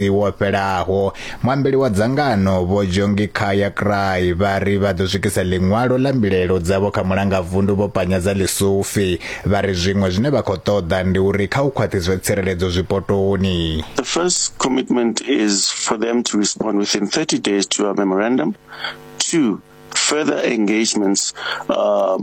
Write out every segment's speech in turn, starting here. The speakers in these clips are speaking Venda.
wo fhelaho muambeli wa dzangano vho jongi khaya cry vha ri vha ḓo swikisa ḽiṅwalo ḽa mbilaelo dzavho kha mulanga vundu vho panya dza lisufi vha ri zwiṅwe zwine vha khou ṱoḓa ndi uri kha u khwaṱhiswe tsireledzo zwipotoni the first commitment is for them to respond within 30 days to our memorandum two further engagements uh,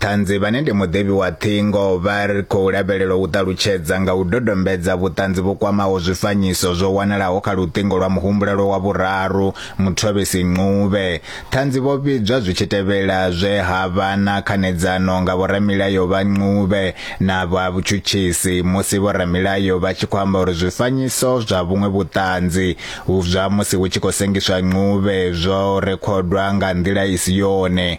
Ṱhanzi vhane ndi muḓevhi wa ṱhingo vha ri khou lavhelelwa u ṱalutshedza nga u dodombedza vhuṱanzi vhu kwamaho zwifanyiso zwo wanalaho kha luṱingo lwa muhumbulelwa wa vhuraru, Muthobisi Ncube. Ṱhanzi vho vhidzwa zwi tshi tevhela zwe ha vha na khanedzano nga vhoramilayo vha Ncube na vha vhutshutshisi musi vhoramilayo vha tshi khou amba uri zwifanyiso zwa vhuṅwe vhuṱanzi zwa musi hu tshi khou sengiswa Ncube zwo rekhodwa nga nḓila i si yone.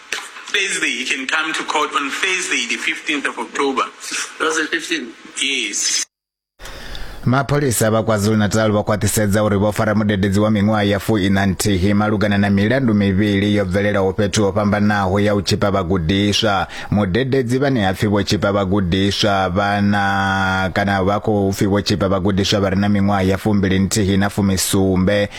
Thursday. He can come to court on Thursday, the 15th of October. That's the 15th. Yes. mapholisa vha kwazulu-natal vha khwaṱhisedza uri vho fara mudededzi wa miṅwaha ya fu ina nthihi malugana na milandu mivhili yo bvelelaho fhethu ho fhambanaho ya u tshipa vhagudiswa mudededzi vhane ha pfi vho tshipa vhagudiswa vhana kana vha khou pfi vho tshipa vhagudiswa vha re na miṅwaha ya fumbili nthihi na fumisumbe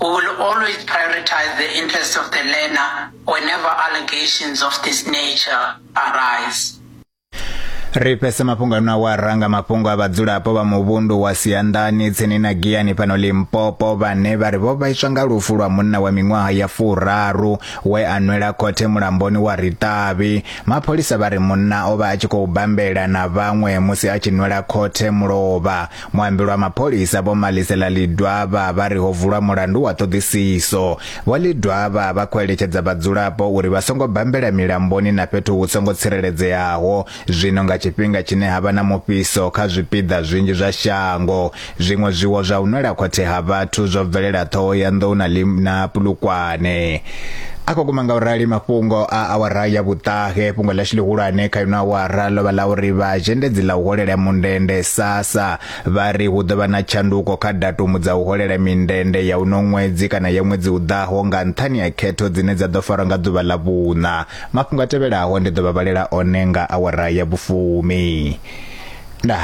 We will always prioritize the interests of the learner whenever allegations of this nature arise. ri fhese mafhungo ano a wa ranga mafhungo a vhadzulapo vha muvhundu wa sianḓani tsini na giyani fhano limpopo vhane vha ri vho vhaiswa nga lufu lwa munna wa miṅwaha ya furaru we a nwela khothe mulamboni wa riṱavhi mapholisa vha ri munna o vha a tshi khou bambela na vhaṅwe musi a tshi nwela khothe mulovha Muambeli wa mapholisa Vho Malisela Lidwaba vha ri ho vulwa mulandu wa ṱhoḓisiso. Vho Lidwaba vha khou eletshedza vhadzulapo uri vha songo bambela milamboni na fhethu hu songo tsireledzeaho zwino nga tshifhinga tshine ha vha na mufhiso kha zwipiḓa zwinzhi zwa shango. Zwiṅwe zwiwo zwa u nwela khothe ha vhathu zwo bvelela Ṱhohoyanḓou na Pulukwane. a khou guma nga u rali mafhungo a awara ya vhuṱahe fhungo ḽashu ḽihulwane kha ino awara ḽo vha ḽa uri vha zhendedzi ḽa u holela mundende sasa vha ri hu ḓo vha na tshanduko kha datumu dza u holela mindende ya uno ṅwedzi kana ya ṅwedzi u ḓaho nga nṱhani ha khetho dzine dza ḓo farwa nga ḓuvha ḽa vhuṋa mafhungo a tevhelaho ndi ḓo vha vhalela one nga awara ya vhufumi nda